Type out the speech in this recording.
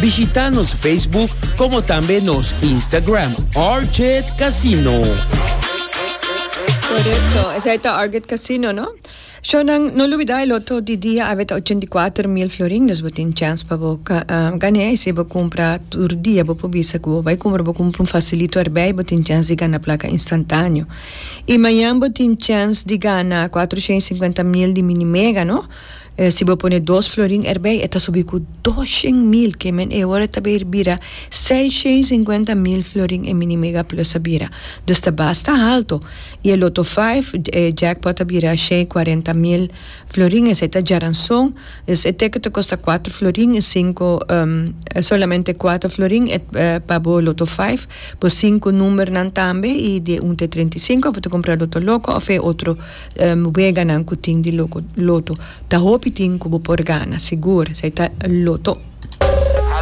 Bishita nos Facebook como tambe nos Instagram Orchid Casino. Correcto. Esa está Arget Casino, ¿no? Shonan, no olvida el otro di día a 84 mil florín, dus botin chance pa bo um, gané si bo compra tur día bo pobisa que bo vai compra bo compra un facilito erbij botin chance di gana placa instantáneo. Y mañana botin chance di gana 450 mil di mini mega, ¿no? E si bo pone dos florin erbei e ta subi ku dos shen mil ke men e ora ta ber bira seis shen sinkuenta mil florin e mini mega plus a bira. Dus ta basta halto. I e loto faif e jackpot ta bira shen i kuarenta mil florin esei ta djaranson dus e teke ta kosta kuater florin i sinku solamente kuater florin e pa bo loto faif bo sinku numbernan tambe i di un te treinta i sinku of bo ta kumpra loto loko of e otro Weganan ku tin di loto ta hopi tin ku bo por gana sigur esei ta loto.